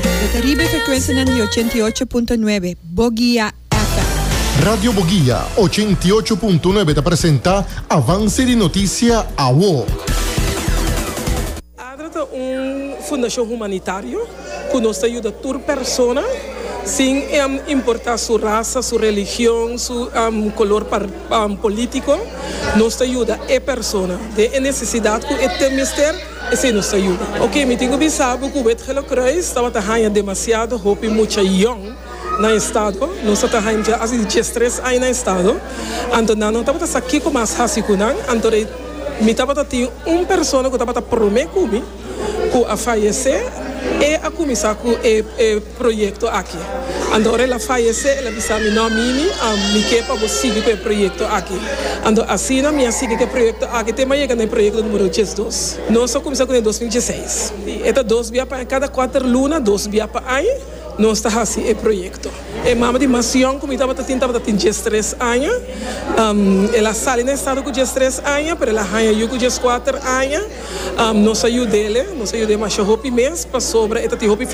Lo ta riba e frekwensianan di ochenta i ocho punto nuebe Bogia FM. Radio Bogia ochenta i ocho punto nuebe ta presenta Avance di Noticia Awo. Adra ta un fundacion humanitario cu nos ta yuda tur persona sin importa su rasa, su religion, su color politico. Nos ta yuda e persona den e necesidad cu e tin mester. Esei nos ta yuda. Oke, mi tin ku bisa bo ku Wet Gele Kruis tabata haña demasiado hopi mucha yòn na e stado. Nos a ta haña dja hasi dies tres aña na e stado. Anto nan no tabata sa kiko mas hasi ku nan. Anto rei mi tabata tin un persona ku tabata promé ku mi ku a fayesé. E a kuminsá ku e. proyekto aki. Ando ora el a fayesé, el a bisa mi, No, Mimi, mi ke pa bo sigui ku e proyekto aki. Ando asina mi a sigui ku e proyekto aki te mi a yega na e proyekto numero diesdos. Nos a kuminsá ku den dos mil dieseis. Si, e ta dos bia pa aña, kada kuater luna, dos bia pa aña, nos ta hasi e proyekto. E mama di mas yòn ku mi tabata tin tabata tin diestres aña. El a sali na estado ku diestres aña, pero el a haña yu ku dieskuater aña. Nos a yud'é, nos a yud'é masha hopi mes pasobra e ta tin hopi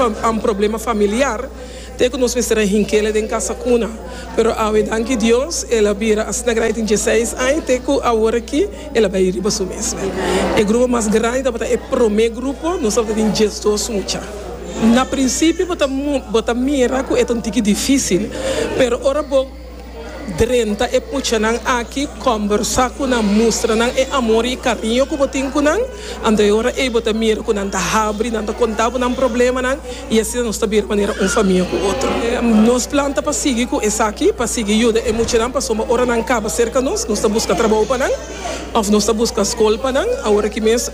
problema familiar ta e ku nos mester a hink'é den kasa kuna. Pero awe danki Dios el a bira asina grandi tin dieseis aña te ku awor aki el a bai riba su mes. E grupo mas grandi tabata e promé grupo, nos tabata tin diesdos mucha. Na prinsipio bo ta mira ku e ta un tiki difísil, pero ora bo. Drenta e puchanan aki, kòmbersá ku nan, mustra nan e amor i kariño ku bo tin ku nan. Anto e ora ei bo ta mira ku nan ta habri, nan ta kontá bo nan problemanan i asina nos ta bira manera un famia ku otro. Nos plan ta pa sigui ku esaki, pa sigui yuda e muchanan pasobra ora nan kaba serka nos, nos ta buska trabou pa nan òf nos ta buska skol pa nan. Aworakí mes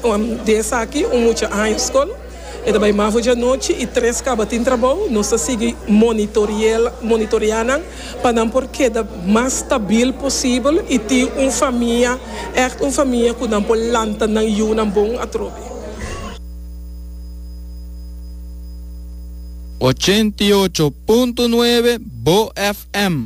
di esaki un mucha haña skol. E ta bai mafo djanochi i tres kaba tin trabou. Nos ta sigui monitorea nan pa nan por keda mas stabil posibel i tin un famia, ègt un famia ku nan por lanta nan yunan bon atrobe. Ochenta i ocho punto nuebe Bo FM.